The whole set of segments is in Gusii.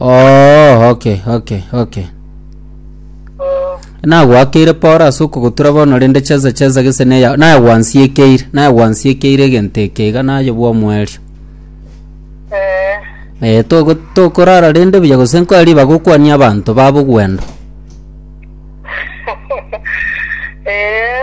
Oh, okay, okay, okay. Eh, Nagwakeire Paul ase okogotura bono rende cheza cheza gese neya naye gwansiekeire naye gwansiekeire egento eke iga naye bwa omwerio. eh, Eh toko tokorara rende buya gose nkoe riba gokwania abanto babo gwenda. eh,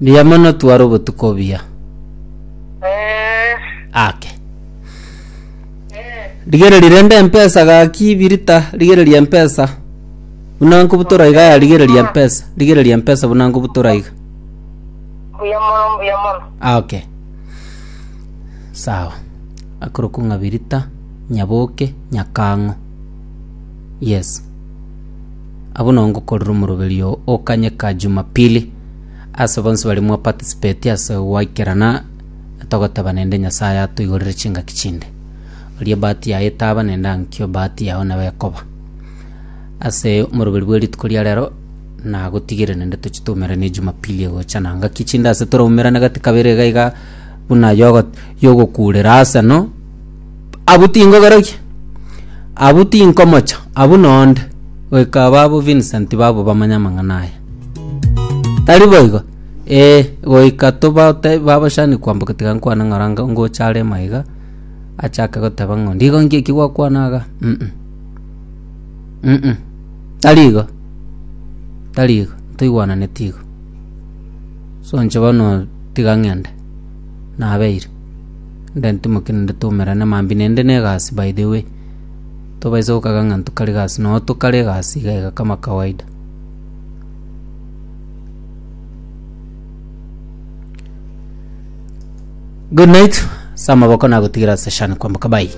Mbuya mono tware obotuko obuya. Ake. Rigereria rende empesa gaki birita rigereria empesa. Buna nkobutora iga ya rigereria empesa. Rigereria empesa buna nkobutora iga. Mbuya mono, mbuya mono. Ake. Sawa. Akorokwa ng'a birita, nyaboke, nyakang'o. Yes. Abwo no ngokorera omoroberio o kanyeka Jumapili ase bonsi baria mwa participate ase goikerana togoteba nende Nyasaye atoigorere chingaki chinde. Oria ebahati yaye etaba nende ankio ebahati yao nabo ekoba. Ase omoroberi bwe rituko ria rero nagotigere nende tochi toumerane Jumapili egocha na ngaki chinde ase toraumerane gati kabere iga iga buna yogo yogokurera ase no. Abwo tinkogerogia, abwo tinkomocha, abwo nonde, goika ababwo Vincent babo bamanye amang'ana aya. Tari boigo? Ee, goika tobaote babochani kwamboka tiga nkwane ng'ora nga- ngocha are ime iga, achake goteba ng'a onde igo nki eki gwakwana iga, mm. Mm, tari igo, tari igo, ntoigwananeti igo. So inche bono tiga ng'ende, nabeire. Ndantimoke naende twaumerane mambia naende na egasi by the way. Tobaisa gokaga ng'a ntokare egasi noo tokare egasi iga iga kama kawaida. Good night, ase amaboko nagotigere ase shani kwamboka bye.